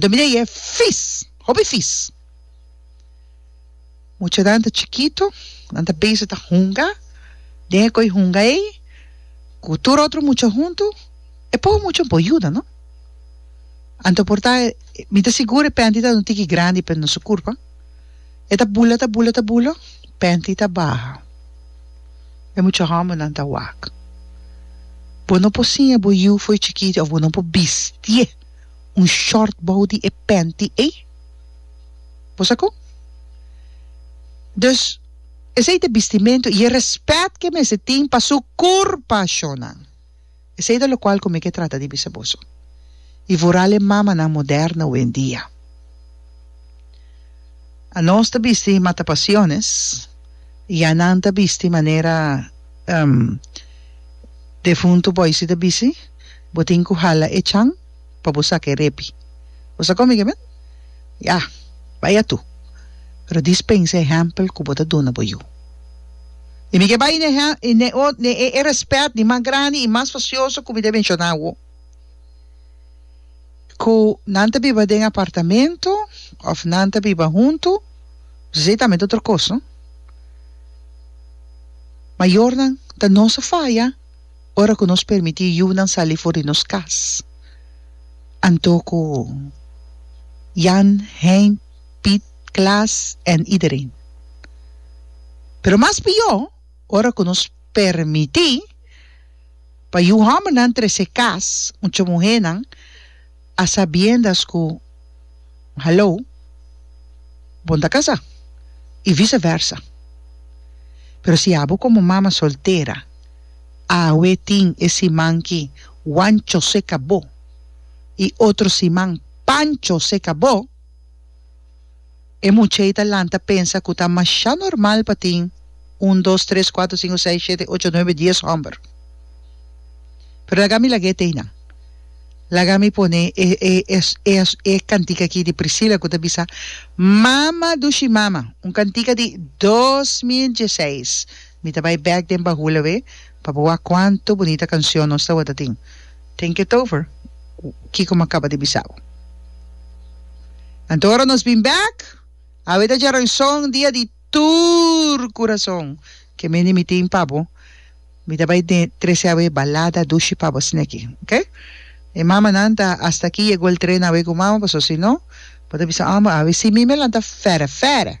Dominee yeh fis, hopi fis. Muchanan ta chikito, nan ta bezig ta hunga, den e koi hunga ei, ku tur otro mucha huntu, e poho mucha no por yuda, no. Anto por ta, mi ta sigur e penti ta duna tiki grandi pa no su kurpa, e ta bula, ta bula, ta bula, penti ta baha, e mucha hòmbernan ta wak. Bo no por siña bo yu fo'i chikiti, òf bo no por bistié. un short bou di e penti ey. Bo sa con? Dus, esey ta e bistimentu y e respet ke mester tin pa su curpa, shownan. Esey ta locual cu mi ke trata di bisa boso. Y vooral e mamanan moderno hoendia. Anos ta bisti matapasiones y anan ta bisti manera defuntu boisi ta bisti. Bo tin cu hala e chan pa bo saca e repi. Bo sa come kimen? Ya, bai atu. Pero dispensa e hempel cu bo ta duna bo yu. Y mi ke bai ne e respet di mas grandi y mas facioso cu mi ta menciona awo. Cu nan ta biba den apartamento of nan ta biba hunto, bisai tambe ta otro cos, no? Mayornan ta no sa faya. ora ku nos permití yunan sali for di nos kas, anto ku Jan, Hein, Piet, Klaas en iedereen. Pero mas pió ora ku nos permití pa yu hòmbernan trese kas un cho muhénan, a sabiendas ku Hallo, bon ta kasá i vise versa. Pero si abo komo mama soltera awe tin e siman ki Wancho seka bo i otro siman Pancho seka bo, E much'ei ta lanta pensa ku ta mashá normal pa tin un, dos, tres, kuater, sinku, seis, shete, ocho, nuebe, dies hòmber. Pero laga mi lag'é t'ei nan. Laga mi pone e e e e kantika aki di Priscila ku ta bisa Mama dushi mama, un kantika di dos mil dieseis. Mi ta bai bek den bahul awe pa bo wak cuanto bunita cancion nos tawata tin. Think it over, Kiko m'a caba di bisa bo. Anto ora nos bin bek, awe ta dja raison dia di tur curason ke mende mi tin pa bo. Mi ta bai den trece awe balada dushi pa bo sneki, ok? E mamanan ta hasta aki yego el trena awe cu mama, pasobra si no, bo ta bisa homber awe si mi mi a lanta fere fere.